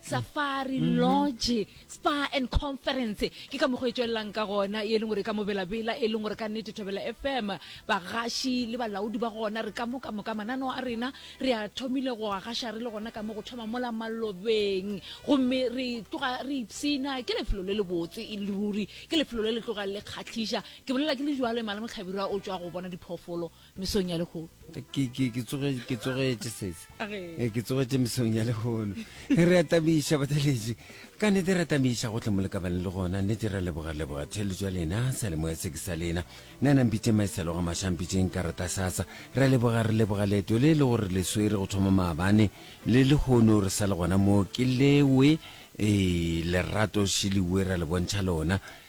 safari mm -hmm. lodge spa and conference ke ka mokgwa e tswelelang ka gona e leng gore ka mobelabela e leng gore ka nnete thobela fm bagaši le balaodi ba gona re ka moka moka mananeo a rena re a thomile go a gaša re le gona ka mo go thoma mola malobeng gomme re tloga re ipsena ke lefelo le le botse e le ruri ke lefelo le le tloga le kgatlhiša ke bolela ke le jalo e mala motlhabirwa o tswa go bona diphoofolo mesong ya lehono. Ke, ke, ke tsoge, ke tsogetše sese. Eh, ke tsogetše mesong ya lehono. Re atamiša batheletši. Ka nete re atamiša gohle mo le ka bane le gona. Nete re leboga, leboga theletšo ya lena, salemoya se ke sa lena. Na nang pitše maeselo ga mašang pitšeng ka rata sasa. Re leboga, re leboga leeto le le gore le swere go thoma maabane. Le lehono re sa le gona mo. Ke lewe, eh, lerato šeliwe ra le bontšha lona.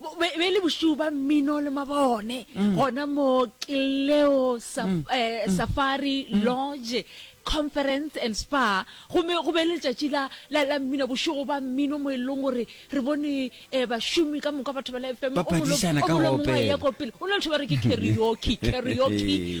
Bo be be le bošuu ba mmino le mabone gona mo Cleo Saf, eh, Safari Lodge Conference and Spa gomme go be le letšatši la la la mmino bošego ba mmino mo e leng gore re bone eh, bašomi ka moka batho ba la FM Ba phadišana ka go opela. ya kopelo go na le batho ba re ke karaoke karaoke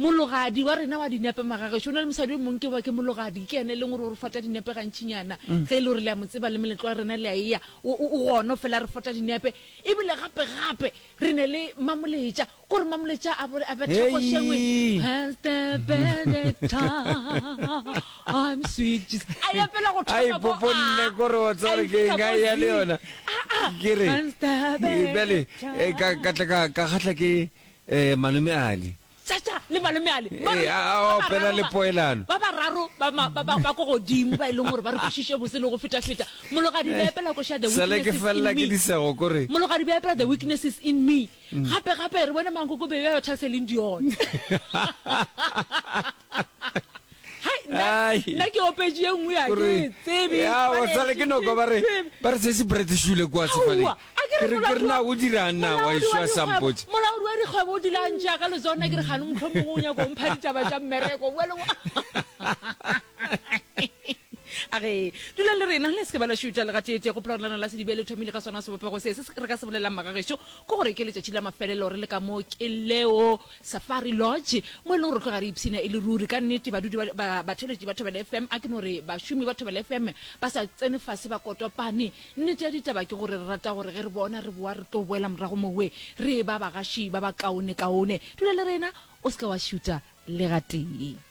Mologadi wa rena wa dinepe Magagešo o na le mosadi yo mongwe ke ba ke Mologadi, ke ene e leng gore o re fota dinepe gantšinyana ge e le gore le a mo tseba le meletlo wa rena le a eya o o gona o fela re fota dinepe. Ebile gape gape re ne le Mamoletša ke gore Mamoletša a a betha go šengwe Has the Benedicta I'm sweet Jesus a e apela go a thoma ko ipoponne ko re wa tseba re ke eng a e ya le yona ke re Has the e bjale Benedicta e ka ka tla ka ka kgahla ke Ee, Malome Ali. Chacha le Malome Ali ba Ee, re a- a ba opela bararo le ba- poelano. ba bararo ba ma- ba- ba- ba ko godimo ba e leng gore ba re kwešiše bose le go feta-feta mologadi ba epela koša the Sale ke weaknesses felela in ke me. disego ko re. mologadi ba epela the weaknesses in me gape-gape re bone mankoko bebe ba thalseleng dione nna ke opetše e nngwe ya ke tsebe ya o sale ke noko ba re ba re se se brete shule kwa sefale ke re ke rena go dira nna wa iswa sampotse mola o re go bo dilang ja ka lezona ke re gane motho mongwe o nya go mpha ditaba tša mmereko wa le wa a re dulang le rena le se ke ba la shuta le gatete go plola rena la se dibele thomile ka sona se bopego se se re ka se bolelang magagešo go gore ke letšatši la mafelelo re le ka mo ke leo Safari Lodge, mo e lego gore tloga re ipshina e le ruri. Ka nnete, badudi ba, ba, batheeletši ba Thobela FM, a ke no re bašomi ba Thobela FM ba sa tsene fase ba kotopane. Nnete ya ditaba ke gore re rata gore ge re bona re boa re tlo boela morago mowe re eba bagaši ba bakaonekaone. Dula le rena, o se ke wa šuta le gatee.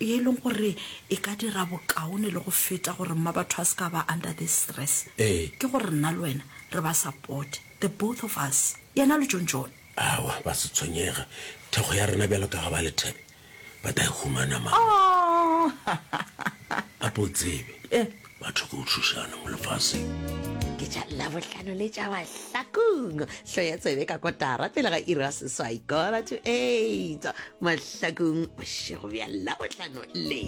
ye e leng gore e ka dira bokaone le go feta gore mma batho a se ka ba under this stress Ee. ke gore nna le wena re ba supporte the both of us yena le john john Aowa, ba se tshwenyege. Thekgo ya rena bjalo ka ga ba lethebe, ba tla e humana, mama. Aww. Gape o tsebe, Eh. Batho ke utšhošane mo lefaseng. ke tša labohlano le tša mahlakong hlo ya tsebe ka kotara pele ga ira seswai kora to eight mahlakong bošego bja labohlano le